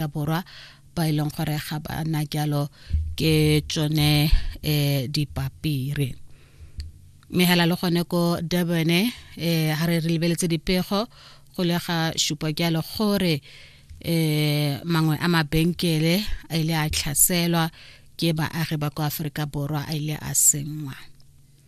Aforika Borwa ba e leng gore ga ba na jalo ke tsone um dipapiri mme hela le gone ko durban um ga re re lebeletse dipego go le ga supa jalo gore um mangwe a mabenkele a ile a tlhaselwa ke baagi ba kwa aforika borwa a ile a sengwa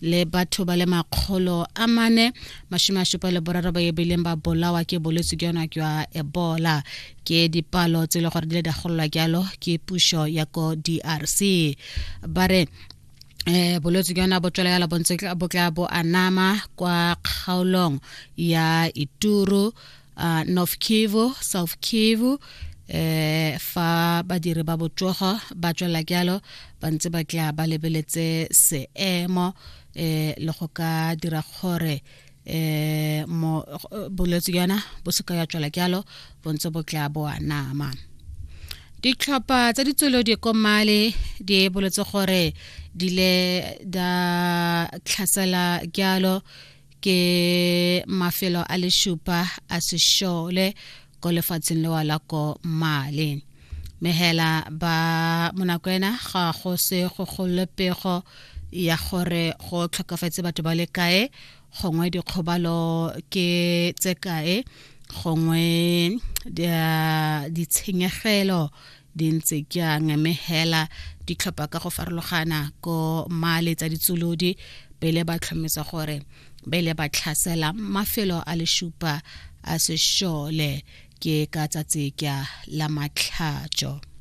le batho ba le makgolo a mane mashome a šupa le boraro ba ebileng ba bolawa ke bolwetse jona jwa ebola ke dipalo tse e le gore di le di agololwa jalo ke pušo ya ko drc ba re eh bolwetse jona bo tswela yala bontse bo tla bo anama kwa kgaolong ya ituru uh, north kivu south kivu eh fa badiri ba botsogo ba tswela jalo ba ntse ba tla ba lebeletse seemo eh le go ka dira gore eh mo bolwetse yana bo se ka ya tswela jalo bo ntse bo tla bo anama ditlhopha tsa ditswelo di komale di boletse gore di le da tlhasela jalo ke mafelo a lešupa a sešole ko lefatsheng lewa la ko male mehela ba monakwena ga go se go kgolole pego ya gore go tlhokafetse batho ba le kae gongwe dikgobalo ke tse kae gongwe ditshenyegelo di ntse jang mme hela ditlhopha ka go farologana ko male tsa ditsolodi pele ba tlhomisa gore bele ba tlhasela mafelo a leshupa a sešole ke ka tsatsi ka la matlhatšo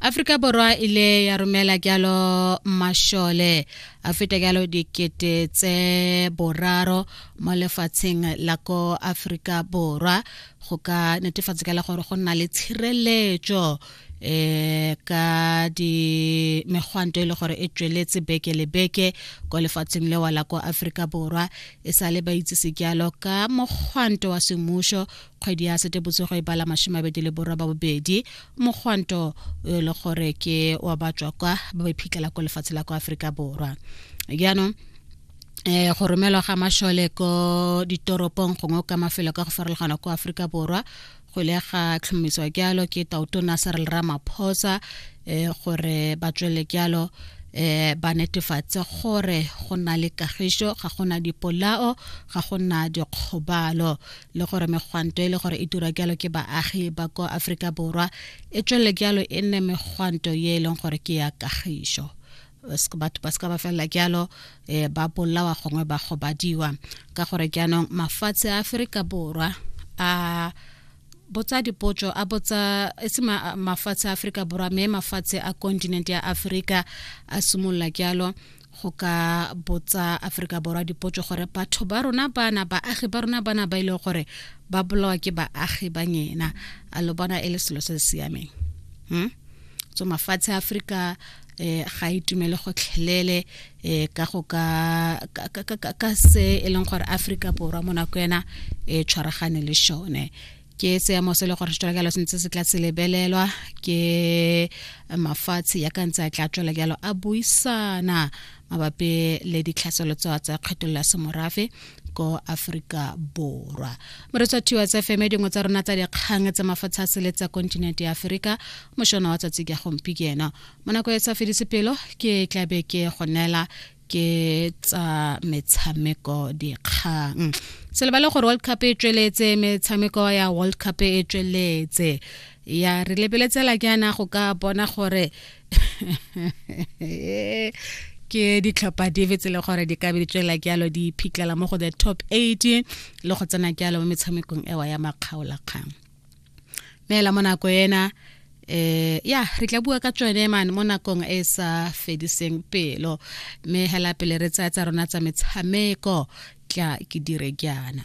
Afrika Borwa ile ya romela kyalo mashole a feta kyalo dikete tse boraro mo lefatsheng la ko Afrika Borwa go ka netefatsa ka le gore go nna le tshireletso eh ka di megwanto e le gore e tsweletse beke le beke kwa lefatsheng lewa la kwa aforika borwa e sa le ba itse sejalo ka mogwanto wa semmušo kgwedi ya setebotsogo e bala masome abedi le borwa ba bobedi mogwanto e le gore ke wa batswa kwa ba ba iphitlhela kwa lefatshe la kwa aforika borwa jaanong eh go romelwa ga mashole ko ditoropong gongwe ka mafelo ka go farologana ko aforika borwa go ile ga tlhomiswa jalo ke tautona serel ramaphosa eh gore ba tswele jalo eh ba netefatse gore go na le kagišo ga go na dipolao ga go na dikgobalo le gore megwanto e le gore e dira jalo ke baagi ba ko aforika borwa e tswele jalo e nne megwanto ye e leng gore ke ya kagišo batho ba se ka ba felela jalo um ba bolawa gongwe ba gobadiwa ka gore jaanong mafatshe a aforika borwa a botsa dipotso a botsa e se mafatshe a aforika borwa mme mafatshe a continent ya aforika a simolola jalo go ka botsa aforika borwa dipotso gore batho ba rona bana baagi ba rona bana ba e leng gore ba bolawa ke baagi ba nyena a lo bona e le selo se se siameng hmm? so mafatshe a aforika eh ga e tumele gotlhelele eh ka go ka ka se e leng gore Africa borwa mo nako ena e tshwaragane le shone ke seemo se le gore se tswela se ntse se tla se lebelelwa ke mafatshe ya ka ntse a tla tswela jalo a buisana mabapi le ditlhaselo tsa tsa kgethololo ya semorafe ko aforika borwa moretsa thiwa tsa fm dingwe tsa rona tsa dikgang tsa mafatshe a sele tsa kontinente ya aforika mošona wa tsatsi ka gompi ke ena mo nako e sa fedise pelo ke tlabe ke go neela ke tsa metshameko dikgang se lebale gore world cup e tsweletse metshameko ya world cup e tsweletse ya re lebeletsela ke yana go ka bona gore ke ditlhopha dife tse le gore di ka be di tswela jalo di phitlhela mo go the top 8 le go tsena jalo mo metshamekong ewa ya makgaolakgang neela mo nako ena eh ya re tla bua ka tsone man mo nakong e sa fediseng pelo mme hela pele re tsaya tsa rona tsa metshameko tla ke dire jaana